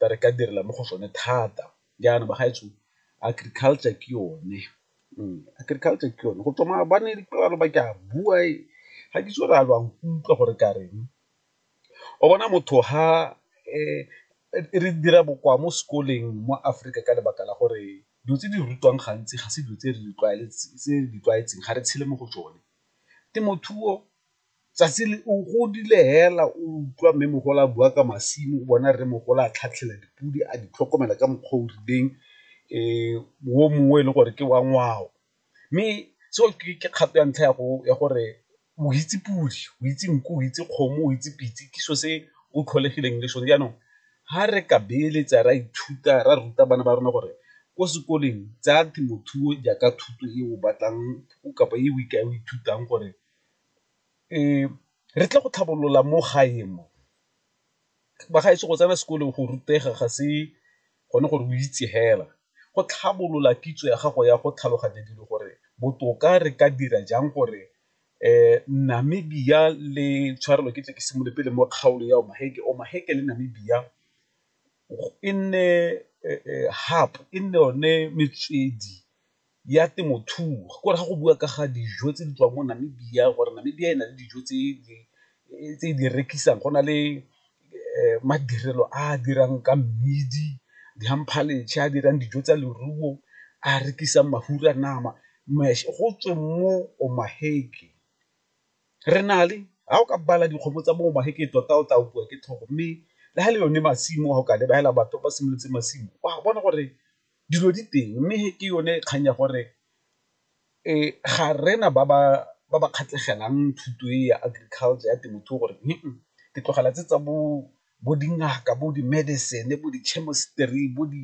tsa re ka direla mo go sone thata jaana ba gaetsho agriculture ke yone, agriculture ke yone go tswa maabane ba ke a bua ga ke itse gore a lo a nkutlwa gore ke a reng, o bona motho ga re dira bokoa mo sekoleng mo Aforika ka lebaka la gore dilo tse di rutiwang gantsi ga se dilo tse re di tlwaetseng ga re tshele mo go tsone, temothuo tsatsi le o godile fela o utlwa mme mogolo a bua ka masimo o bona re mogolo a tlhatlhela dipodi a di tlhokomela ka mokgwa o rileng o mongwe e le gore ke wa ngwao. Mme seo ke kgato ya ntlha ya gore o itse podi, o itse nku, o itse kgomo, o itse pitse ke selo se o tlholegileng le sone, jaanong ga re ka beeletsa ra ithuta ra ruta bana ba rona gore ko sekoleng tsaya temothuo jaaka thuto e o batlang kapa e o ithutang gore Re tle go tlhabolola mo gae mo, bagaetsho go tsena sekolo go rutega ga se gone gore o itse fela, go tlhabolola kitso ya gago ya go tlhaloganya dilo gore botoka re ka dira jang gore Namibia le tshwarelo ke tle ke simolole pele mo kgaolo ya Omaheke, Omaheke le Namibia e nne hub e nne yone metswedi. ya temothuo ke gore ga go bua ka ga dijo tse di tswang mo Namibia gore Namibia e na le dijo tse e di rekisang go na le madirelo a a dirang ka mmidi, di a dirang dijo tsa leruo, a rekisang mafura a nama go tswe mo o maheke re na le ga o ka bala dikgomo tsa bo maheke tota o tla opiwa ke tlhogo mme le ga le yone masimo ga o ka lebelela batho ba simolotse masimo wa bona gore. Dilo di teng mme ke yone kgang ya gore ga rena ba ba kgatlhegelang thuto e ya agriculture ya temothuo gore ke tlogela tse tsa bo dingaka, bo di-medicine, bo di-chemistry, bo di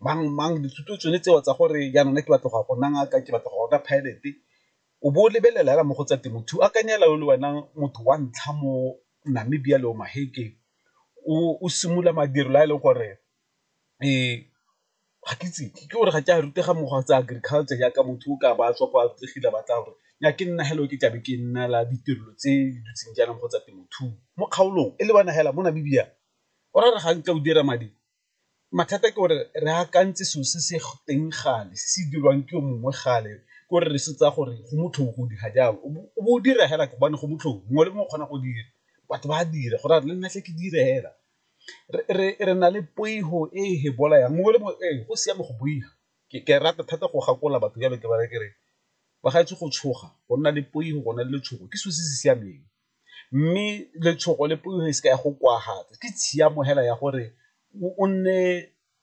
mang mang dithuto tsone tseo tsa gore jaanong nna ke batla go ya go nna ngaka, ke batla go ya go nna pilot o bo o lebelela fela mo go tsa temothuo. Akanya fela o le wena motho wa ntlha mo Namibia le Omaheke o simolola madirelo a e leng gore Ee, ga ke itse ke gore ga ke a rutega mokgwa tsa agriculture jaaka motho o ka ba a tswa kwa tlegile a batla gore ya ke nna helo ke tlabe ke nna la ditirelo tse di dutseng jaanong kgotsa temothuo mo kgaolong e le bona hela mo Namibia o ra re ga ntse o dira madi mathata ke gore re akantse selo se se teng gale se se dirwang ke o mongwe gale ke gore re se tsa gore go motlhofo go dira jalo o bo o dira fela gobane go motlhofo mongwe le mongwe o kgona go dira batho ba dira go raya le nna tle ke dire fela. re na le poifo e e bolayang mongwe le mongwe ee go siame go boifa ke rata thata go gakola batho jalo ke ba raya ke re ba ga etse go tshoga go nna le poifo go na le letshogo ke selo se se siameng, mme letshogo le poifo e se ka ya go kwagala ke tshiamo fela ya gore o nne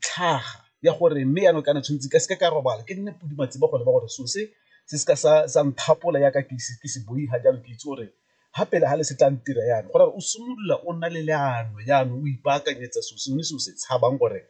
tlhaga ya gore mme jaanong kana tshwanetse ka seke ka robala ke nne podi matseba go leba gore so se se se ka sa sa nthapola yaka ke se ke se boi ga jalo ke itse gore ga pele ga le se tla ntira yana gore o simolola o nna le leano jaanong o ipaakanyetsa so sengwe se o se tshabang gore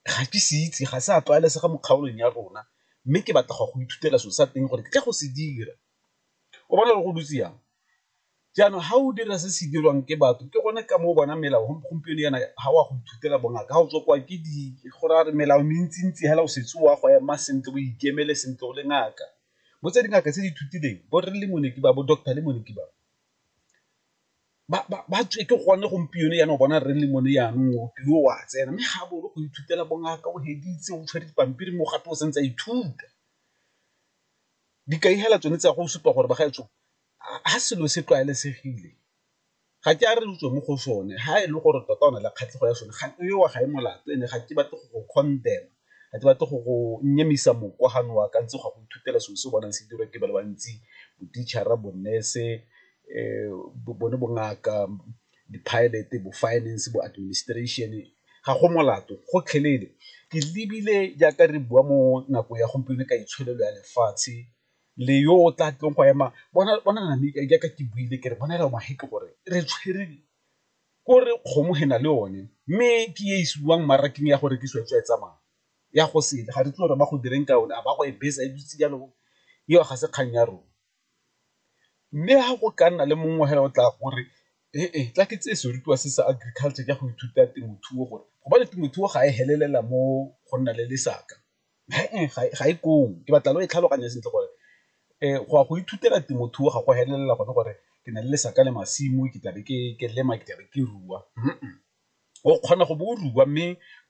ga ke se itse ga se a tlwaelesega mo kgaolong ya rona mme ke batla go go ithutela so sa teng gore ke tla go se dira o bona gore go dutse yang Jaanong ga o dira se se dirwang ke batho ke gone ka moo bona melao gompieno yana ga o a go ithutela bongaka ga o tswa kwa ke di go raya gore melao mentsi-ntsi hela o setse o a go ema sentle o ikemele sentle o le ngaka. Bo tse dingaka tse di ithutileng bo rre Lemoniki ba, bo doctor Lemoniki ba, ba tswe ke gone gompieno yana o bona rre Lemone yanong o o a tsena mme ga a boolo go ithutela bongaka o feditse o tshwere dipampiri mo gape o santse a ithuta. Dikai hela tsone tsa go supa gore bagaetsho ga selo se tlwaelesegile ga ke a re utlwe mo go sone ga e le gore tota o na le kgatlhego ya sone ga eo ga e molato ene ga ke batle go go condemn-a ga ke batle go go nyemisa moka ga nowa ka ntse go go ithutela selo se o bonang se dirwa ke ba le bantsi bo-teacher-ra, bo-nurse, bone bongaka, di-pilot, bo-finance, bo-administration ga go molato gotlhelele. Ke lebile jaaka re bua mo nakong ya gompieno ka itsholelo ya lefatshe le yo o tla tlong go ema bona bona nami ka jaaka ke buile ke re bona ela mahe ke gore re tshwere ko re kgomo he na le one mme ke e isiwang mmarakeng ya go rekisiwa tswa e tsamaya ya go sele ga re tlo re ba go direng ka yone a ba go e besa e dutse jalo eo ga se kgang ya rona mme ha go ka nna le mongwe he o tla gore e tla ke tse se rutiwa se sa agriculture ka go ithuta temothuo gore go ba le temothuo ga e helelela mo go nna le lesaka. ga e ko o, ke batla lo e tlhaloganye sentle gore go ya go ithutela temothuo ga go felelela gone gore ke na le lesaka le masimo ke tlabe ke lema ke tlabe ke rua, o kgona go bo o rua mme